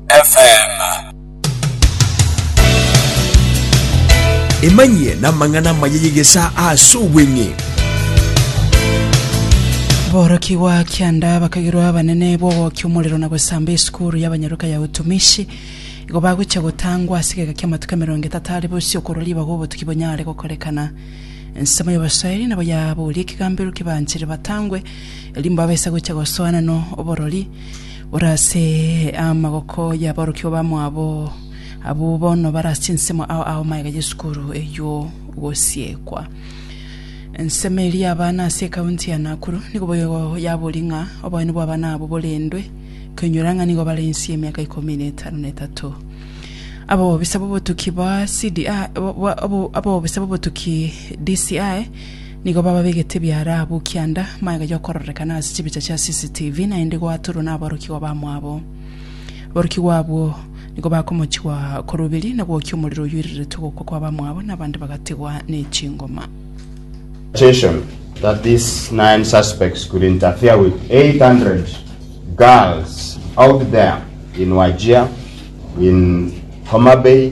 FM. emanyie namang'ana amaya y'egesa ase obweng'e borokigwa kianda bakagirwa abanene bw'ogokia omorero na gosamba esukuru y'abanyaruka ya utumishi igo bagocha gotangwa ase egeka ki'amatuko emerongo etato are bosio okorwa ribaga obotuki bonyare gokorekana ensemo y'abaswahili nabo yaboria ekigambero kibanchire batangwe erimbo abese gocha gosoana no oborori Ore ase amaboko y'aborokigwa bamwabo, abwo bono bare ase ensemo ao ao magega y'esukuru eyio gosiekwa. Ensemo eria y'abana ase ekaunti ya Nakuru nigo boigo yaborie ng'a oboene bw'abana abwo borendwe, koinyora ng'a nigo bare inse y'emiaka ikomi na etano na etato. Abobisa b'obotuki ba CDI, bo- bo- abo- abobisa b'obotuki DCI Nigo bababegete biara abwo kianda, magega y'okororekana ase chibicha chia CCTV, naende goatorwa naborokigwa bamwabo. Aborokigwa abwo nigo bakomochigwa korwa oberie na gwokia omorero oyoireretwe gokwa kwa bamwabo, na abande bagategwa ne chingoma. Attention that these nine suspects could interfere with 800 girls out there in Wajir, in Homabay,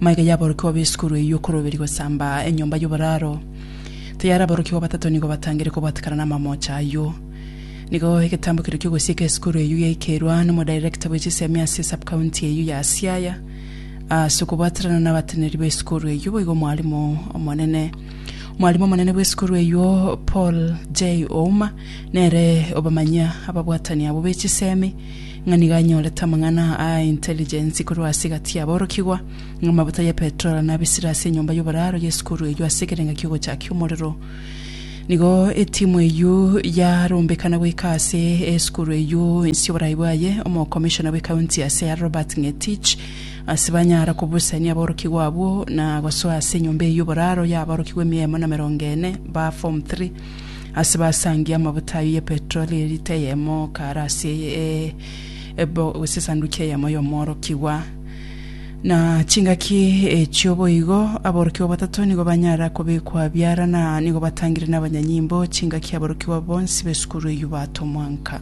Maiga y'aborokigwa b'esukuru eyio okoroberi gosamba enyomba y'oboraro. Tayari aborokigwa batato nigo batangire kobwatekana n'amamoocha ayio. Nigo egetambo keria ki'ogosieka esukuru eyio giaikerwa n'omodirector bwe chisemi ase esub-county eyio ya Siaya. Ase okobwaterana n'abateneneri b'esukuru eyio boigo omwalimu omonene omwalimu omonene bw'esukuru eyio Paul J. Ouma nere obamanyia ababwatani abwo be chisemi ng'a nigo anyorete amang'ana aa a intelligence korwa ase egati y'aborokigwa, ng'a amabuta ya petrol nabisire ase enyomba y'oboraro y'esukuru eyio ase ekerenga ki'ogochakia omorero. Nigo etimu eyio yarombekana goika ase esukuru eyio inse y'oborai bwaye omokomishona bw'ekaunti ya Siaya Robert Ng'etich ase banyara kobusania aborokigwa abwo na gosoa ase enyomba eyio y'oboraro y'aborokigwa emiya emo na merongo ene ba form three Ase basangie amabuta ayio ye petroli erita eyemo kare ase ebo, gose esanduki eyemo y'omworokigwa. Na chingaki echio boigo, aborokigwa batato nigo banyara kobekwa biara, na nigo batangire n'abanyanyimbo chingaki aborokigwa bonsi b'esukuru eyio batomwa nka.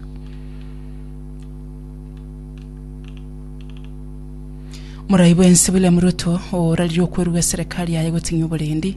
Morai bwensi William Ruto, orarire okwerua eserekari yaye goting'ia oborendi,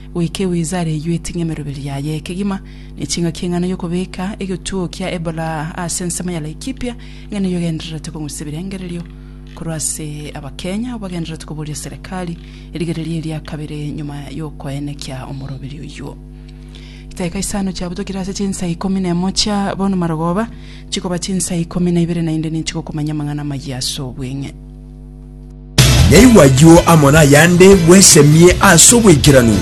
Goika ewiza areywe eting'e emeroberi yaye kegima, ne ching'aki eng'ana y'okobeka egetuo kia Ebola ase ensemo ya Laikipia, eng'ana eyio egendererete kong'usa ebirengererio korwa ase Abakenya abwo bagendererete koboria serekari erigereria eria kabere nyuma y'okoenekia omoroberi oyio. Chidaeka isano chiabutokire ase chinsa ikomi na emo chia bono marogoba, chikoba chinsa ikomi na ibere naende ninchigokumanya amang'ana amayia ase obweng'e. Yaigwa ayio amo nayande, bwesemie ase oboikeranu.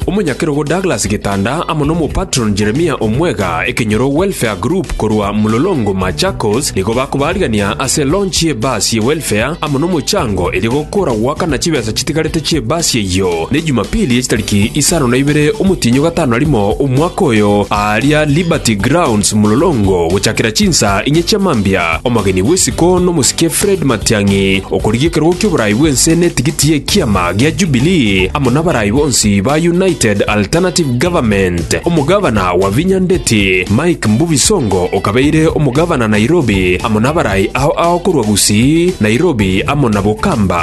Omonyakerogo Douglas Gitanda amo n'omopatron Jeremia Omwega ekenyoro Welfare Group korwa Mlolongo Machakos nigo bakobarigania ase launch ye bus ye welfare amo nomochango erio gokora goakana chibesa chitigarete chie bus eyio. Na Ejumapili ye chitariki isano na ibere omotienyi o gatano na rimo omwaka oyo, aaria Liberty Grounds Mlolongo gochakera chinsa inye chia mambia, omogeni bw'isiko n'omosike Fred Matiang'i okorigia ekerogo ki'oboraai bw'ense n'etigiti y'ekiama gia Jubilee amo nabaraai bonsi ba United Alternative Government. Omogavana wa Vinya Ndeti, Mike Mbuvi Songo okabeire omogavana Nairobi amo nabaraai ao ao korwa Gusii, Nairobi amo na Bokamba.